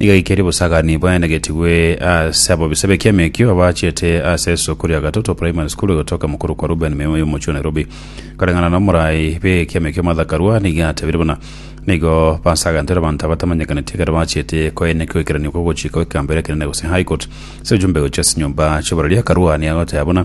Nigo aikeire obosagani bwaenegetigwe ase abobisa b'ekiamekio abaachete ase esoko ria Gatoto Primary School egotoka mokoro kwa Reuben Memo y'omochie wa Nairobi. Koreng'ana n'omorai b'ekiamekio Martha Karua nigo atebirie buna nigo basagantoire abanto abatamanyekaneti ekero baachete koenekwa ekeranio kogochika gw'ekegambero ekenene gose High Court ase ojumbe gochia ase nyomba chi'oborori. Karua nigo agoteba buna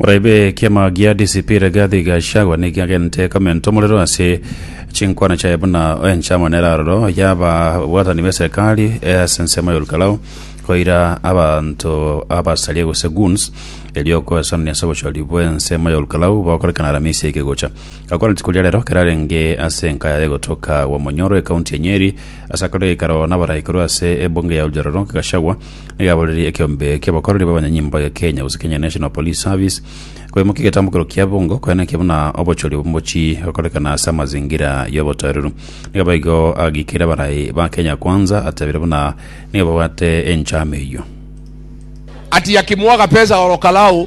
Orebe ekiama gia DCP Rigathi Gachagua nigo agente komenta omorero ase chinkwana chiaye buna enchama nere aroro y'ababwatani b'eserikari ase ensemo ya Olkalau koira abanto abasaria gose goons erio okoesanani ase obochori bw'ensemo ya Olkalau bokorekana Aramisi eye ekegocha. Gakwana rituko ria rero kerarenge ase enka yaye gotoka gwa Monyoro ekaunti ya Nyeri ase akore geikaro nabarai korwa ase ebunge ya Oljororo Gachagua nigo aboriri ekiombe kiabakoreri babanyanyimbo ya Kenya gose Kenya National Police Service koimokia egetambukero kia bungo koena ekio buna obochori obomochi gokorekana ase amazingira yobotoereru nigo baigo agikire abarai ba Kenya Kwanza atebire buna nigo babwate enchama eyio. Ati yakimwaga pesa oro Kalao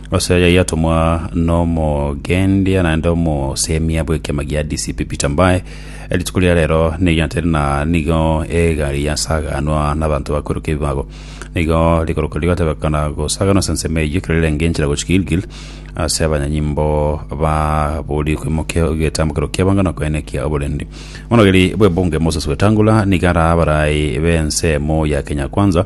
Ase aya yatomwa n'omogendia naende omosemia bw'ekiama gia DCP Peter Mbae, rituko ria rero nigo tari na nigo egari yasaganwa n'abanto bakweruka ebibago. Nigo rikorokwa rigatebekana gosaganwa ase ensemo eyio ekero rirenge enchera gochia Gilgil ase abanyanyimbo ba Buri kwimoka egetambokero ki'abanga na koenekia oborendi. Omonogeri bw'ebunge Moses Wetangula nigo arabe abarai b'ensemo ya Kenya Kwanza,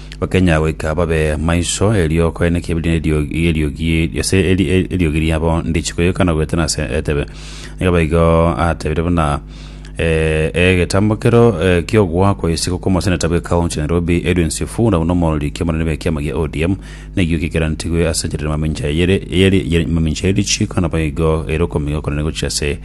Bakenya goika babe maiso, erio koene kebirine eriogi eriogi ase eri- eri- eriogi riabo ndichi koyokana goetana ase etebe. Nigo baigo atebire buna eh, egetambo kero eh, ki'ogoa kwa isiko kw'omoseneta bwe county ya Nairobi Edwin Sifuna buna omorori ki'omonene bw'ekiama gia ODM nekiyo kikerantigwe ase enchera ya mamincha eyere eyeri- eyeri- mamincha ya richiiko nabo igo ere okomiga okonene gochia ase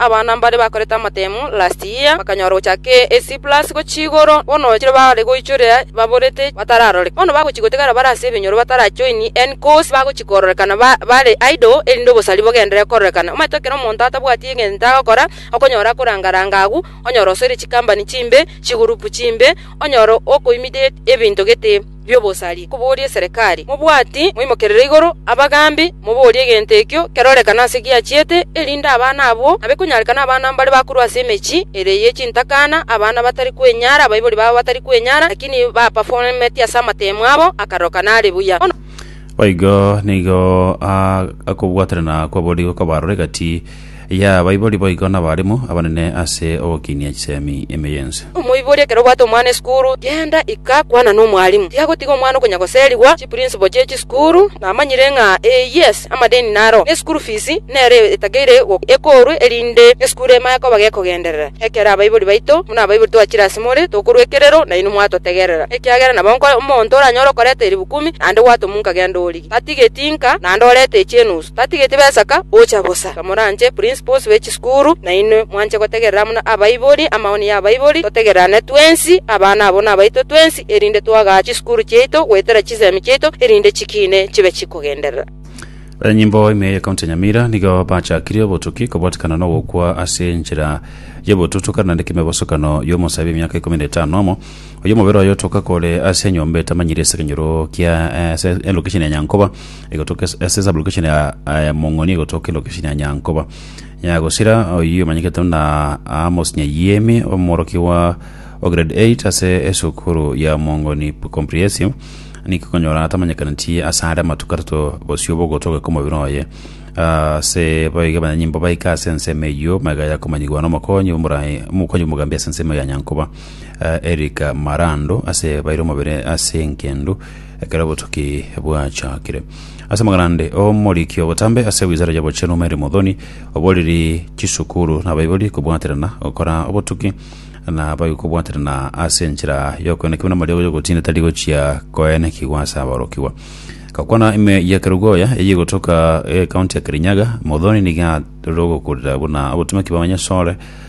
Abana mbare bakorete amatemu last year bakanyora gochaka A+ gochia igoro, bono chire bare goichoria baborete batararoreka. Bono bagochia gotigara bare ase ebinyoro batarajoin any course bagochia kororekana bare idle erinde obosari bogendere kororekana. Omanyete ekero omonto atabwati egento agokora okonyora akoranga ranga agwo, onyora osoire chikambani chimbe, chigurupu chimbe, onyora okoimidiate ebinto gete. bi'obosari, koboria eserekari, Mobwati moimokerere igoro abagaambi moborie egento ekio kerorekane ase giachiete, erinde abana abwo abe konyarekana abana mbare bakorwa ase emechie ere ye chintakana, abana batari kwenyara, abaibori babo batari kwenyara, lakini bapaformeti ase amateemo abo akaroka nare buya. Boigo nigo a- akobwaterana kw'aboriko kwabarore gati. y'abaibori boigo nabaremu abanene ase ogokinia chisemi emeye ense. Omoibori ekero obwate omwana esukuru, genda ika kwana nomwalimu. Tiagotiga omwana okonya goserigwa chiprinciple chie chisukuru, namanyire ng'a ee yes, amadeni naro, ne school fees nere etageire ekorwe erinde esukuru emaye koba gekogenderera. Ekero abaibori baito buna abaibori twachire ase more, tokorwa ekerero, nainwe mwatotegerera, ekiagera nabo nko omonto oranyore okoreta eribu kumi, naende gwatomunka genda orie. Tatigeti inka naende orete echi enusu, tatigeti besaka gocha bosa. Iga moranche principals be chisukuru nainwe mwanche gotegerera amo na abaibori amaoni ya abaibori, totegererane twensi abana abo nabaito twensi erinde twagaa chisukuru chiaito goetera chisemi chiaito erinde chikiine chibe chikogenderera. Abanyanyimbo ime ye county ya Nyamira nigo bachakire obotuki kobwatikana na ogokwa ase enchera y'obotutuka naende kemebosokano y'omosae bw'emiaka ikomi na etano nomo Oyomobere oyo otoka kore ase enyomba etamanyire ase ekenyoro kia eh, ase elokesheni ya Nyankoba egotoka ase ase sablokesheni ya eh, Mong'oni egotoka elokesheni ya Nyankoba Nyagosira oyio omanyekete na Amos Nyayiemi omorokigwa o grade 8 ase esukuru ya Mong'oni Comprehensive niki konyora atamanyekaneti ase are amatuko atato bosio bogotoka kw'omobere oye ase boiga abanyanyimbo baika ase ensemo eyio magega ya komanyigwa na omokonyi omorai omokonyi bw'omogambi ase ensemo ya Nyankoba Erika Marando ase baire omobere ase engendu ekero obotuki bwachakire. Ase amagana ande, omoriki obotambe ase Wizara y'Obochenu Mary Muthoni oboriri chisukuru nabaibori kobwaterana gokora obotuki na baige kobwaterana ase enchera y'okoenekigwa namarigo y'ogotinda tari gochia koenekigwa ase aborokigwa. Gokwana ime ya Kerugoya eyio egotoka County ya Kirinyaga, Muthoni nigo aroro gokurera buna obotomeki bw'abanyasore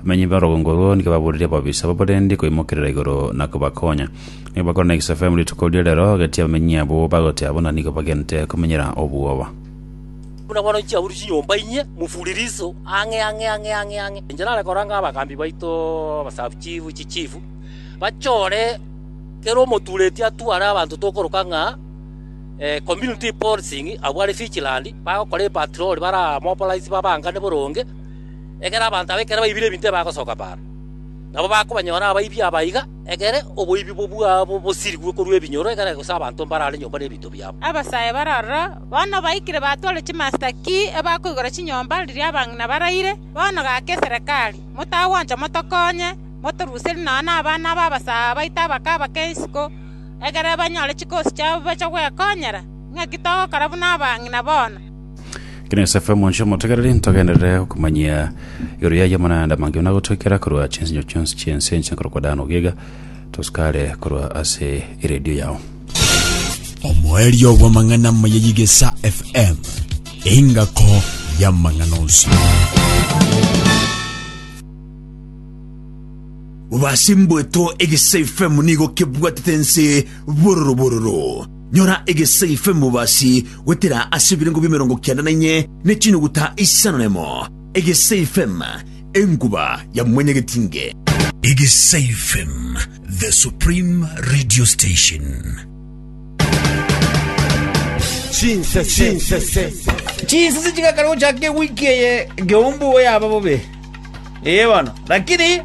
Abamenyi b'orogongo orwo nigo baburerie ababisa abo barende koimokerera igoro na kobakonya. Nigo bakore na Isafemu rituko ria rero, gati abamenyi abwo bagotea buna nigo bagente komenyera obwoba. Buna bono inche aburie chinyomba inye, mofure riso ang'e ang'e ang'e ang'e ang'e. Inche nare koranga abagaambi baito, abasabuchifu, chichifu, bachore kera omotureti atware abanto tokoroka ng'a community policing abwo are vigilant, bagokora epatroli bare abamobilize babangane boronge, Ekero abanto aba ekero baibire ebinto ebi bagosoka baaro, nabo bakobanyora abaibi aba iga, ekere oboibi bwabo bosirigwe korwa ebinyoro, ekere gose abanto mbarare nyomba nebinto biabo. Abasae bare aroro, bono baikire batware chimasita ki ebakoigora chinyomba riria abang'ina baraire. Bono gaka eserekari, motagwancha motokonye, motoruserie nonya nabana b'abasae aba baito abake abake isiko, ekere banyore chikosi chiabo bache gwekonyera. Ng'aki togokora buna abang'ina bono? Ekero Yosefu omonche omotegereri, ntogenderere okomanyia igoro yaye amang'ana ande amange buna agotoikera korwa chinsinyo chionsi chi'ense enchia nkorokwa Dan ogiega, tosukare korwa ase eredio yao. Omoerio bw'amang'ana amaya y'Egesa FM, engako y'amang'ana onsi. Obwase mboeto Egesa FM nigo kebwatete ense bororo bororo. Nyora egesaife mobasi goetera ase ebirengo biemerongo kianda na inye ne chinyuguta isano na emo, egesaifem, enkuba ya mwanyagetinge. Egesaifem, the supreme radio station. Chinsese chigakana gochaka ewiki eye Geumbu oyaba bobe. Ee bono. Lakini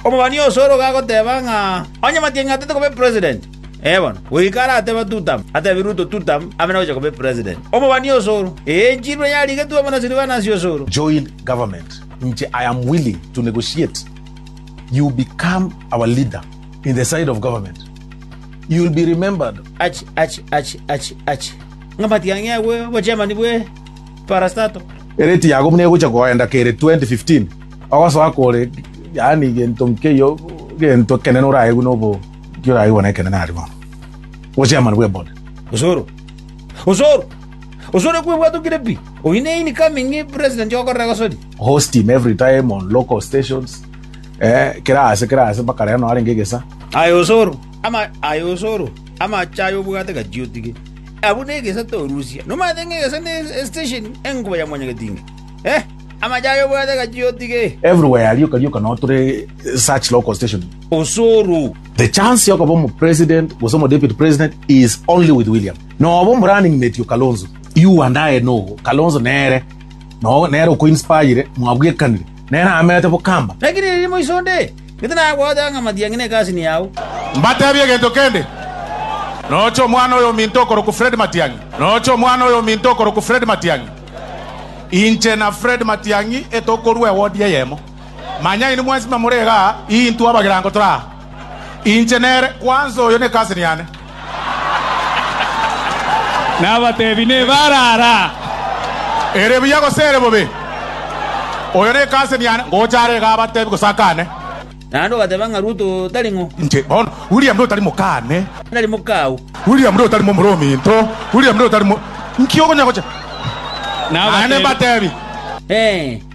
omobani osoro gagoteba ng'a onye Matiang'i atatete koba epresident, Ee bono, goika aratebe Tutamu, atebi Ruto Tutamu ame nogocha koba epresident. Omobani osoro, eechirwe yarigetwe amo na Silvanus osoro. Join government inche I am willing to negotiate you become our leader in the side of government you will be remembered. Achi achi achi achi achi ng'a matiang'i agwe obochemani bwe parastato. Ere tiyago buna egocha koenda kere 2015 ogosoa kore yaani gento nkeyio gento ekenene oraegwe nobo. Nki oraigwa nekenene aria bono? Obochairman bw'ebori. Osoro! Osoro! Osoro ekwebwatokire pi! Oyi neini coming president okorera gosoria. Host him every time on local stations. Eh, kera ase, kera ase, mpaka rero noarenge egesa. Aye osoro! Ama, aye osoro! Amache aye obwate gati otige. Abwo negesa torusia. Nomanyete ng'a egesa ne estation enkuba ya mwanyagetinga. Eh, amache aye obwate gati otige. Everywhere rioka rioka no tore such local station. osoro. The chance yokoba omo president gose omo deputy president is only with William. Noba omo running mate o Kalonzo. You and I know Kalonzo nere no nere oko inspire mwabwekanire. Nere amerete bokamba. Lakini riria moiso onde, gete nagoeta ng'a Matiang'i ne cousin yao. Mbatebie egento kende, noche omwana oyo ominto okorokwa Fred Matiang'i, noche omwana oyo ominto okorokwa Fred Matiang'i. Inche na Fred Matiang'i etokorua ewodi eyemo. Manya inwe mwensi bamorege aa, intwe abagerango tore aa. Inche nere, kwanza oyo ne cousin yane. Nabateebie, Nebare ara. Ere buya gose ere bobe? Oyo ne cousin yane, ngocha are iga abateebie gose akane. Naende ogateba ng'a Ruto tari ng'o? Inche, bono, William nigo tari mokane. Tari mokao. William nigo tari momura ominto. William nigo tari mo. Inki okonya gocha? Naende mbateebie. Ee.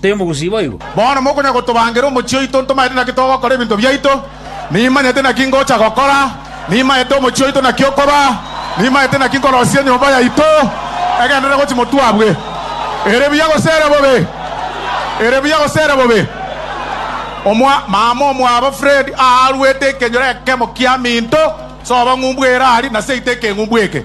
Tari omogusi boigo? Bono mokonya gotobangera omochie oito ntomaete naki togokora ebinto biaito. Nimanyete naki ngocha gokora, nimanyete omochie oito naki okoba, nimanyete naki nkorosia enyomba yaito. Egenderere gochi motwe abwe. Ere buya gose ere bobe? Ere buya gose ere bobe? Omwa, mama omwabo Fred aaruete ekenyoro ekemo kiaminto, soba ng'umbu ere aria, na seita ekeng'umbu eke.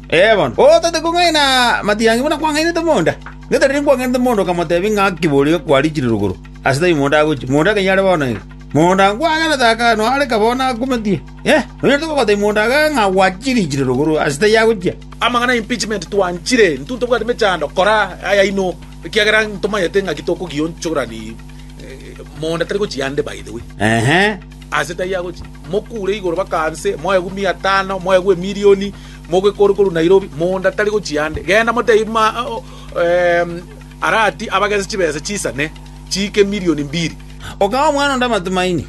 Ee bono, otagete kong'aina matiangi buna kwang'ainete omonda? Ng'ete riria nkwang'ainete omonda okamoteebia ng'a kiborio kwariichire rogoro, ase tari mondo agochia, mondo akaiyo are bono iga. Mondo nkwagerete aka noareka bono akometie. Inee! Nonyarete gokoteebia mondo ake ng'a gwachiriichire rogoro, ase tari agochia? Amang'ana 'impeachment' twanchire, intwe ntobwate mechando, kora ayaino, ekiagera ntomanyete ng'aki tokogionchorani. Mondo tari gochia ande by the way. Ehe. Ase tari agochia. Mokure igoro baka nse, moegwe mia tano, moegwe emilioni. mogoika ore korwa Nairobi, monda tari gochia ande. Genda motebie buna arati abagese chibesa chisane chiika emilion mbiri. Okaha omwana onde amatumaini,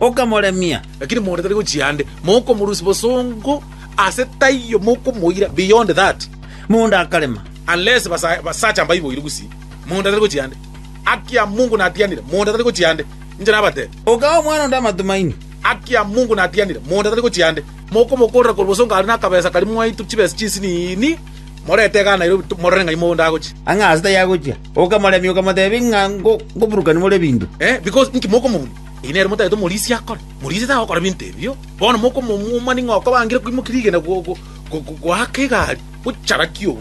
okamoremia. Lakini monda tari gochia ande, mokomorusia bosongo ase taiyo, mokomoira beyond that. Monda akarema. Unless basacha mbaiboire gusii, monda tari gochia ande. Haki ya Mungu natianire, monda tari gochia ande. Inche nabatebie. Okaha omwana onde amatumaini. Haki ya Mungu natianire, monda tari gochia ande. Mokomokorera korwa boso ngare nakabesa karia mwaitwe chibesa chinsini, morete egana erio morore ng'ai mogondo agochia. Ang'e aase taiyo agochia, okamoremia, okamotebia ng'a ngoburukani more ebinto. Because inki mokomobuna? Eyi nere motagete omorisia akore. Morisia tagokora ebinto ebio. Bono mokomomumani ng'a okobangire koimokia rigena goaka egari gochara kiogo.